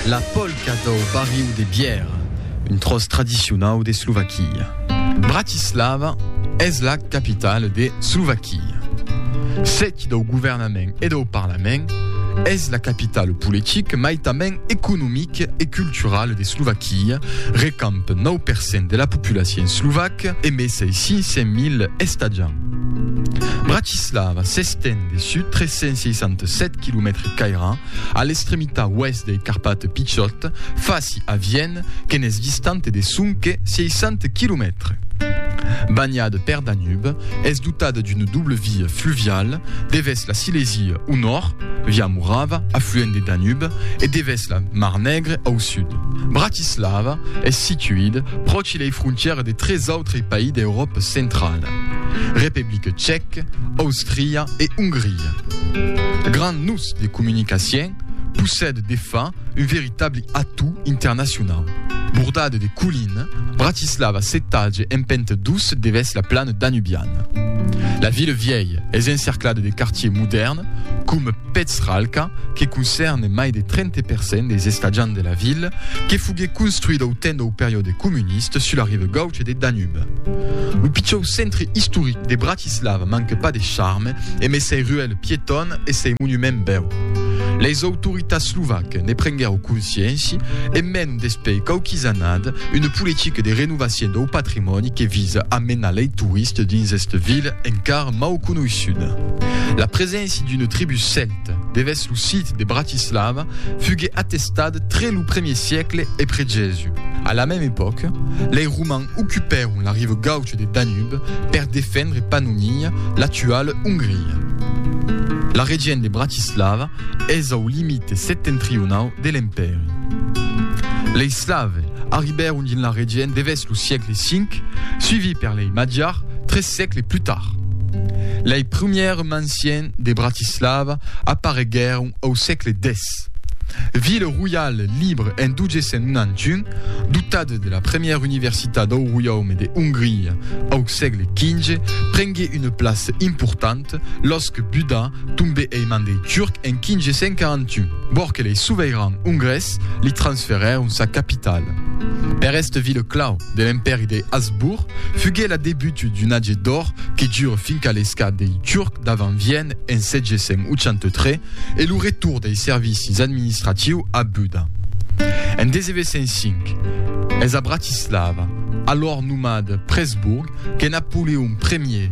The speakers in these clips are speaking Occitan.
La polca dau barriu de Bièra, un tròç tradicionau d'Eslovaquia. Bratislava es la capitala d'Eslovaquia. Sèt dau governament e dau parlament, es la capitala politica mai tanben economica e culturala d'Eslovaquia, recamp nòu per cent de la populacion eslovaca e mai 600.000 estatjants. Bratislava s'estend de sud 367 quilomètre cairà a l'extremitat oèst dei Carpate Pichòt, fasi a Vienne, que n'es distante de sonque 60 quilomètres. Banhada per Danube, es dotada d'una doble via fluviala, devèrs la Silèsia au nòrd, via Morava, afluent de Danube, e devèrs la Mar Negre au sud. Bratislava es situida pròche de la Via Baltica. que lei frontières de tres autrei país d'Euròpa centrala, Republic Tchèc, Austria e Ongria. Grand nus de comunicacion, possède de fa un veritable atau internacionau. Bordade de colline, Bratislava s'etalhe en pente dous devès la plana danubiana. La ville vièlha es encerclada de quartiers modèrns, coma Petralka, que concerne mai de 30 per cent des estatjants de la ville, que foguèt construït au temps dau periòde comuniste sus la riva gaucha de Danube. Lo pichau centre istoric de Bratislava manca pas de charme e mai sei ruelle piétonne e sei monument bèu. Leis autoritats slovaques ne prenguèron consciéncia e mènon despei quauquis annada una politica de renovacion dau patrimòni que visa a menar lei touristes dins esta vila encara mau conoissuda. La preséncia d'una tribú celta, Devèth lo sit de Bratislava fugue atestat tre lo premier siecle epret Jèsu. A la mème epòca, lei Romans ocupèron la riva gaucha deth Danube per defendre Pannonia, l'actuala Ongria. La region de Bratislava es au limite septentrionau de l'Empèri. Lei Slave arribèron dins la region devèth lo siecle V, suivi per lei Magiars, sègle plus tard. Lei prumèrs manciens de Bratislava apareguèron au sègle xix. Vila roial libre en 1291, dotada de la premièra universitat dau roiaume de Hongria au sègle xv, prengué una plaça importanta los que Buda tombè ei man dei Turcs en 1541, vòr que lei soveirans hongrés li transferèron sa capitala. Per esta vila clau, de l'Empèri de Habsbourg, fugué la debut d'un age d'òr que dure fin qu'a l'esclat dei Turcs davant Vienne en 783 e lo retorn dei servicis administratius a Buda. En 1905, es a Bratislava, alòr nomat Presburg, que Napoleon Ier,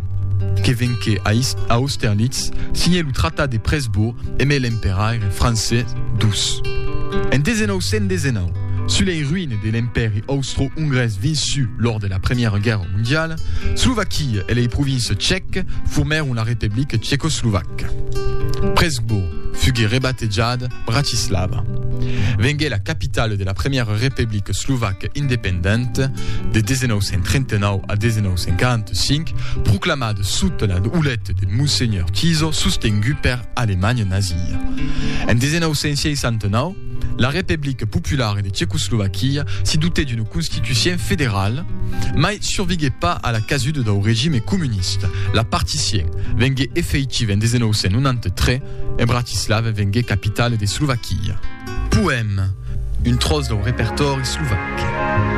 que venqué a Austerlitz, signè lo Tratat de Presburg e met l'emperaire francés dus. En 1919, sus lei ruines, de l'Empèri Austro-Ongrés vençut lors de la Premiera Guèrra Mondiala, Slovaquia e lei provinces tchèques formèron la Republica Tchecoslovaca. Pressburg fugué rebatejada Bratislava. Vengué la capitala de la Premiera Republica Slovaca Independenta de 1939 a 1945, proclamada sota la oleta de Monsenhor Tiso sostengut per Alemanha Nazia. En 1969, La Republic Popular de Tchecoslovaquia se dotèt d'una constitucien federal, mai surviguèt pas a la casuda dau regime comunista. La particien vengué efeitiva en 1993 e Bratislava vengué capitala de Slovaquia. Poèm, un tròç dau repertòri slovac.